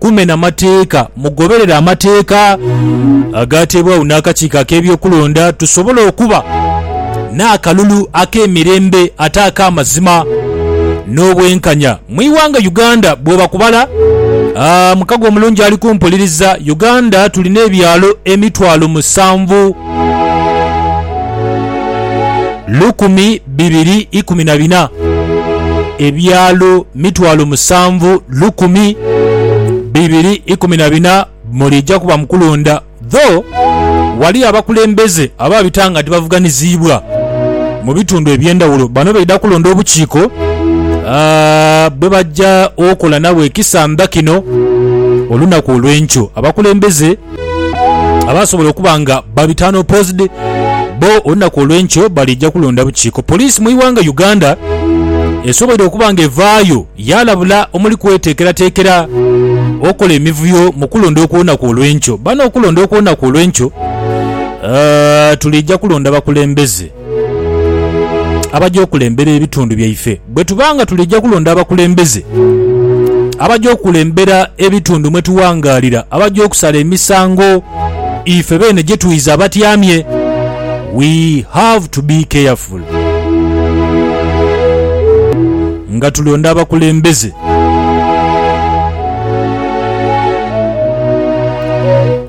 Kumena mateeka. Mugoberere amateeka agaateebwagho n'Akakiiko ak'Ebyokulonda tusobole okuba n'akalulu ak'emirembe ate ak'amazima n'obwenkanya mu ighanga Uganda. Bwooba ku bala mukago omulungi ali kumpuliriza, Uganda tulina ebyalo emitwalo musanvu lukumi. bibiri ikumi na bina, ebyalo mitwalo musanvu lukumi bibiri ikumi na bina muliija kuba mu kulonda though waliyo abakulembeze ababita nga tibavuganiziibwa mu bitundu eby'endhawulo bano baidha kulonda obukiiko bwebaja okola nabwo ekisandha kino olunaku olw'enkyo abakulembeze abasobola okuba nga babitaano posed bo olunaku olwenkyo balija kulonda bukiiko. Poliisi mu iwanga Uganda esoboire okuba nga evaayo yalabula omuli kwetekeratekera okola emivuyo mu kulonda okwolunaku olwenkyo. Bano okulonda okwolunaku olwenkyo uh, tulija kulonda bakulembeze abaja okulembera ebitundu byaife. Bwe tuba nga tulija kulonda abakulembeze abaja okulembera ebitundu mwe tuwangaalira, abaja okusala emisango ife beene gye twidha abatyamye, we have to be careful nga tulonda abakulembeze.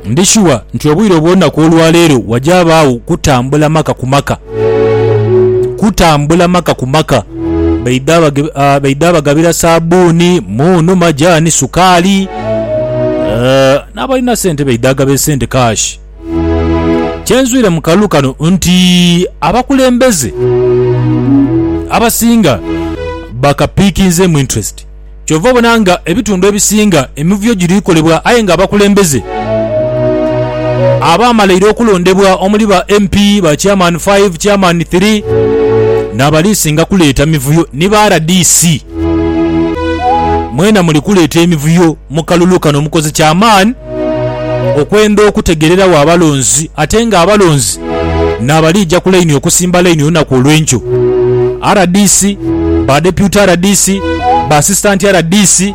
Ndi shuwa nti obwire obw'olunaku olwa leero wajabaagho kutambula maka ku maka. Kutambula maka ku maka. Baidha baidha bagabira saabbuuni, muunu, majaani, sukaali. N'abalina sente baidha gaba esente kaashi. Kye nzwire mu kalulu kano nti abakulembeze abasinga bakapiikinzeemu interest. Kyova obona nga ebitundu ebisinga emivuyo giri kolebwa aye nga abakulembeze abaamalaire okulondebwa omuli ba MP, ba Chairman five, Chairman three n'abaliisinga kuleeta mivuyo ni ba rdc. Mwena muli kuleeta emivuyo mu kalulu kano mukoze kya maani. okwenda okutegereragho abalonzi ate nga abalonzi nabalija ku laini okusimba laini olunaku olwenkyo. Rdc, ba Deputy Rdc, ba Assistant Rdc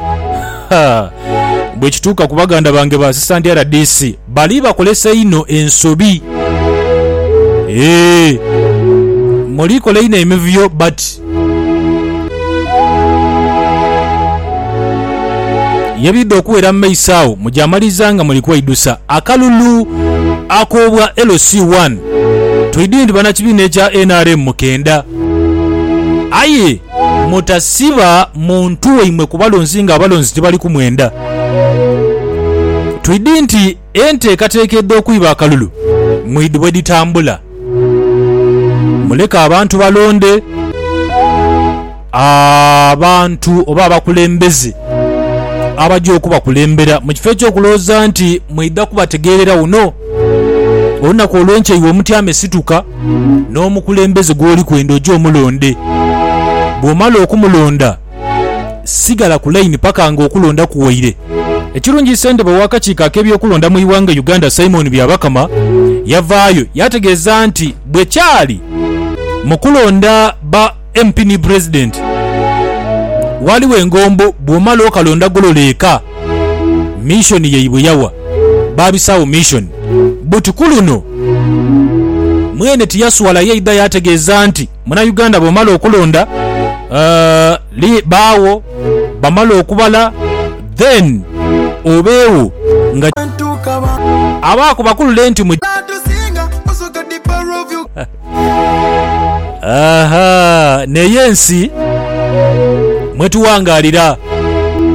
haa bwekituuka ku baganda bange ba Assistant Rdc bali bakolesa einho ensobi eeh muli kola inho emivuyo but. Yebidha okuwera mu maiso agho mujamaliriza nga muli kweidusa akalulu ak'obwa LC One. Twidhi nti banakibiina ekya nrm mukendha aye mutasiba muntu waimwe ku balonzi nga abalonzi tibali kumwendha. Twidhi nti. Enteekateeka edh'okwiba akalulu mwidhi bwe dhitambula. Muleke abantu balonde abantu oba abakulembeze abaja okubakulembera mu kifo eky'okulowooza nti mwidha kubategeerera wuno. Olunaku olw'enkya iwe omutyame situka n'omukulembeze gw'oli kwenda oje omulonde. Bw'omala okumulonda, sigala ku layini paka nga okulonda kuwaire. Ekirungi ssentebe w'akakiiko ak'ebyokulonda mu Iwanga Uganda Simon Byabakama yavaayo yategeeza nti bwe kyali mu kulonda ba MP ni Pulezidenti waaliwo engombo bw'omala okalonda golola eka missioni ye bwe yawa baabisaawo missioni but ku luno mwene tiyaswala yaidha yategeeza nti Munauganda bw'omala okulonda baagho bamala okubala then obeegho nga abaaku bakulule nti mugya. Aha, n'eyo ensi mwe tuwangaalira.